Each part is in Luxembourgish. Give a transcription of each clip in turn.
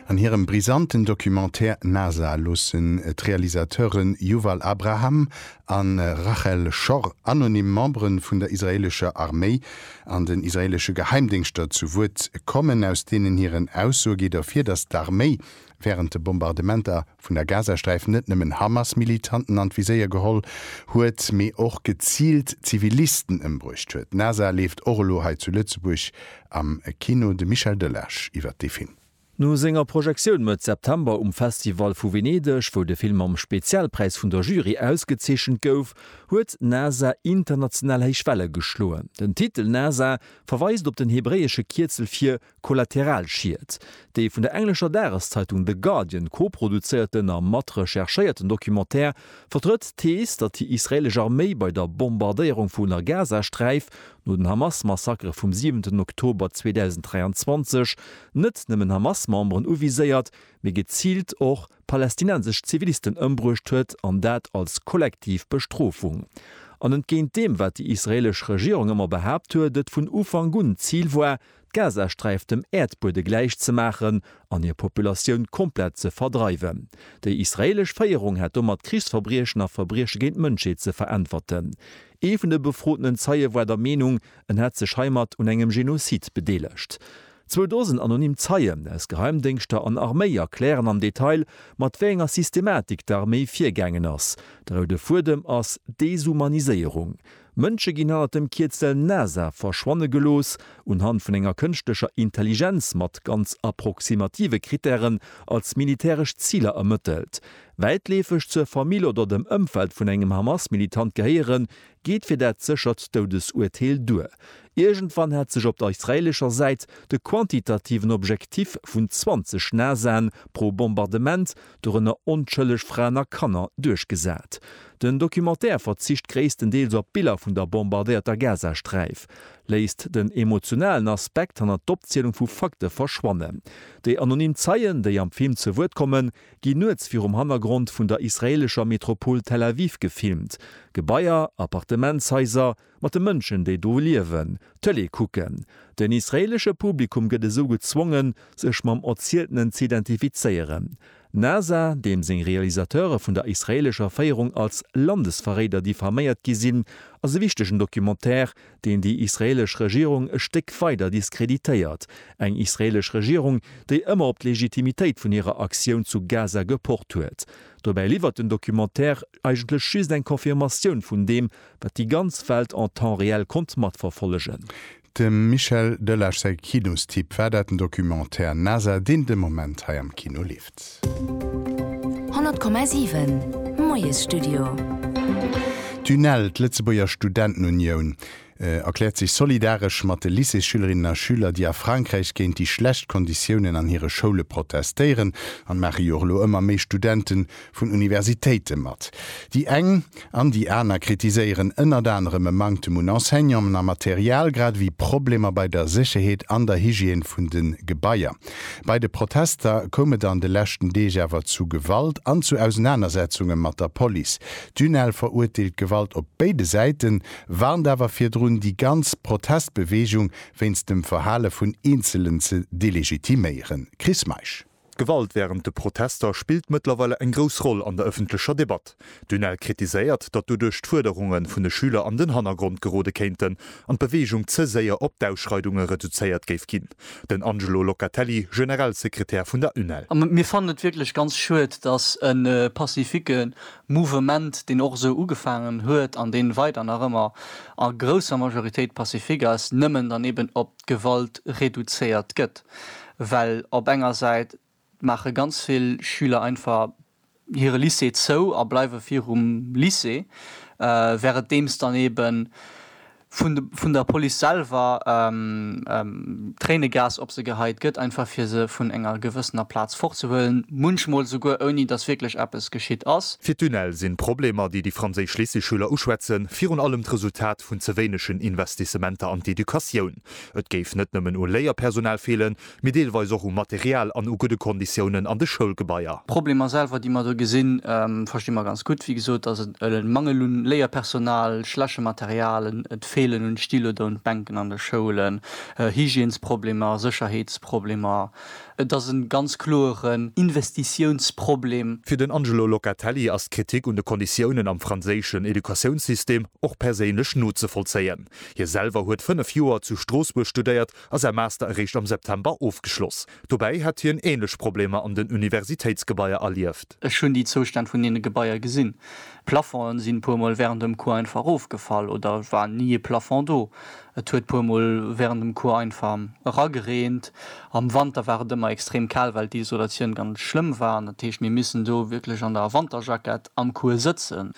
An hirem brisanten Documentaire NASA loossen d'Realisateuren Yuval Abraham a Rachel Shor anonym Membere vun der israeelescher Arméi an den israeelesche Geheimdéngschter zu Wuert kommen, aus deenen hiren Aussoe geet ervir, datt d'Arméi wärend de Bombardementer vun der Gazasträif net nëmmen Hamas-Militanten an d'Viséier geholl huet, mee och geziilt Zivilisten ëmbruecht huet. Nasa leeft och elo hei zu Lëtzebuerg am Kino. De Michel Delage iwwer dee Film. No senger Projektioun Mëtt September um Festival vu Venedeg, wou de Film mam Spezialpräis vun der Jury ausgezeechent gouf, huet Nasa international héich Welle geschloen. Den Titel Nasa verweist op den hebräesche Kierzel fir Kollateralschied. Dee vun der englescher Dageszeitung The Guardian koproduzéierten a matrecherchéierten Documentaire vertrëtt d'Thees, datt déi israeelesch Arméi bei der Bombardéierung vun der Gazasträif no den Hamas-Massakere vum siwenten Oktober 2023 net nëmmen Hamas-Memberen uviséiert, mee geziilt och palästinensesch Zivilisten ëmbruecht huet, an dat als kollektiv Bestrofung. An entgéint deem, wat déi israeelesch Regierung ëmmer behaapt huet, et vun Ufank un d'Zil war, d'Gazasträif dem Äerdbuede gläich ze maachen an hir Populatioun komplett ze verdreiwen. Déi israeelesch Féierung hätt domat Krichsverbriechen a Verbrieche géint d'Mënschheet ze veräntwerten. Ee vun de befrotenen Zeie war der Meenung, en hätt sech heimat un engem Genozid bedeelegt. Zwou Dosen anonym Zeien aus Geheimdéngschter an Arméi erklären am Detail, mat wéi enger Systematik d'Arméi virgaangen ass. De roude Fuedem ass d'Deshumaniséierung. Mënsche ginn hannert dem Kierzel NASA verschwanne gelooss, unhand vun enger kënschtlecher Intelligenz mat ganz approximative Krittären als militäresch Ziler ermëttelt. Wäitleefeg zur Famill oder dem Ëmfeld vun engem Hamas-Militant gehéieren, geet fir dat séchert Doudesuerteel duer. Iergendwann hätt sech op der israeelescher Säit de quantitativen Objektiv vun 20 NASAen pro Bombardement dorënner onschëlleg Fraen a Kanner, duerchgesat. Den Documentaire verzicht gréisstendeels op Biller vun der bombardéierter Gazasträif, léisst den emotionalen Aspekt hanner d'Opzielung vu Fakte verschwannen. Déi anonym Zeien, déi am Film zu Wuert kommen, ginn nuets virum Hannergrond vun der israeelescher Metropol Tel Aviv gefilmt, Gebaier, Appartementshaiser, Mat de Mënschen, déi do liewen, Tëlee kucken. Den israeelesche Publikum gëtt esou gezwongen, sech mam Erzieltenen ze identifizéieren. Nasa, deem seng Realisateure vun der israeelescher Féierung als Landesverréider diffaméiert gi sinn, ass e wichtegen Documentaire, deen déi israeelesch Regierung e Stéck weider diskreditéiert. Eng israeelesch Regierung, déi ëmmer op d'Legitimitéit vun hirer Aktioun zu Gaza gepocht huet. Dobäi liwwert den Documentaire eigentlech just eng Confirmatioun vun deem, Wat déi ganz Welt en temps réel konnt matverfollegen. Dem Michel Delage säi Kinostipp war dat, den Documentaire NASA, deen de Moment hei am Kino leeft. 100,7 Moiesstudio. D'UNEL, d'Lëtzebuerger Studentenunioun, erkläert sech solidaresch mat de Lycéesschülerinnen a schüler, déi a Frankräich géint déi schlecht Konditiounen an hire Schoule protestéieren. An et maache jo och elo ëmmer méi Studenten vun Universitéite mat. Déi eng an déi aner kritiséieren ënnert anerem e Manktem un Enseignanten a Material, grad ewéi Problemer bei der Sécherheet an der Hygiène vun de Gebaier. Bei de Protester koum et an de leschten Deeg awer zu Gewalt an zu Ausenanersetzunge mat der Police. D'UNEL verurteelt d'Gewalt op béide Säiten, warnt awer virdrun, déi ganz Protestbeweegung wéinst dem Verhale vun Eenzelen ze delegitiméieren. Chris Meisch. D'Gewalt wärend de Protester spillt mëttlerweile eng grouss Roll an der ëffentlecher Debatt. D'UNEL kritiséiert, datt doduerch d'Fuerderunge vun de Schüler an den Hannergrond gerode kéinten an d'Beweegung ze séier op d'Ausschreidunge reduzéiert géif ginn. Den Angelo Locatelli, Generalsekretär vun der UNEL. A mir fannen et wierklech ganz schued, datt e pacifique Mouvement, deen och esou ugefaangen huet an dee weider nach ëmmer a grousser Majoritéit pacifique ass, nëmmen dann eben op d'Gewalt reduzéiert gëtt, well op enger Säit maache ganz vill Schüler einfach hire Lycée zou a bleiwe virum Lycée, währendeems dann eebe vun der Police selwer Tréinegas op se geheit gëtt, einfach fir se vun enger gewëssener Plaz fortzehuelen, munchmol esouguer ouni datt wierklech eppes geschitt ass. Fir d'UNEL sinn d'Problemer, déi déi franséisch Lycéeschüler uschwätzen, virun allem d'Resultat Impakt vun ze wéinegen Investissementer an d'Educatioun. Et géif net nëmmen u Léierpersonal feelen, mee deelweis och u Material an u gudde Konditiounen an de Schoulgebaier. D'Problemer selwer, déi mer do gesinn, versti mer ganz gutt. Wéi gesot ass et e Mangel un Léierpersonal, schleche Material, et feelen un Styloder un d'Bänken an de Schoulen, Hygiènesproblemer, Sécherheetsproblemer, Et ass e ganz kloeren Investitiounsproblem. Fir den Angelo Locatelli ass d'Kritik un de Konditiounen am franséischen Educatiounssystem och perséinlech nozevollzéien. Hie selwer huet fënnef Joer zu Stroossbuerg studéiert a säi Master eréischt am September ofgeschloss. Dobäi hätt hien änlech Problemer an den Universitéitsgebaier erlieft. Ech hunn déi Zoustänn vun deene Gebaier gesinn. D'Plafongen sinn e puer Mol wärend dem Cours einfach erofgefall oder war ni e Plafond do. Et huet puer mol während dem Cours einfach eragereent. Am Wanter war et ëmmer extrem kal well d'Isolatioun ganz schlëmm war. Dat heescht mir missen do wierklech an der Wanterjackett am Cours sëtzen.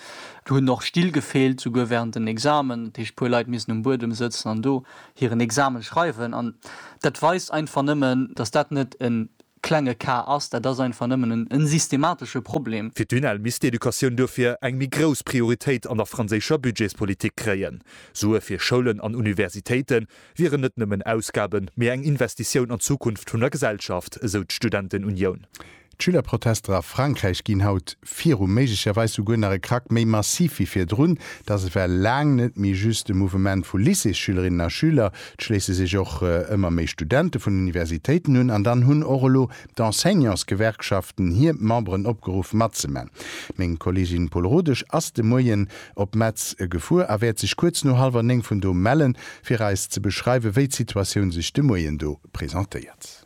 Do hunn och Still gefeelt, souguer während den Examen. Dat heescht puer Leit missen um Buedem sëtzen an do hiren Examen schreiwen. An dat weist einfach nëmmen, dass dat net en klenge Ka ass. Dat ass einfach nëmmen e systematesche Problem. Fir d'UNEL misst d'Educatioun duerfir eng méi grouss Prioritéit an der franséischer Budgetspolitik kréien. Sue fir Schoulen an Universitéite wieren net nëmmen Ausgaben, mee eng Investitioun an d'Zukunft vun der Gesellschaft, esou d'Studentenunioun. D'Schülerprotester a Frankräich ginn haut viru, méiglecherweis souguer nach e Krack méi massiv wéi virdrun. Dass et war laang net méi just e Mouvement vu Lycéesschülerinnen a schüler, Et schléisse sech och ëmmer méi Studente vun Universitéiten un an dann hunn och elo d'Enseignantsgewerkschaften hir Memberen opgeruff matzemaachen. Meng Kollegin Paul Rodesch ass de Moien op Metz gefuer a wäert sech kuerz no hallwer néng vun do mellen, fir eis ze beschreiwen, wéi d'Situatioun sech de Moien do presentéiert.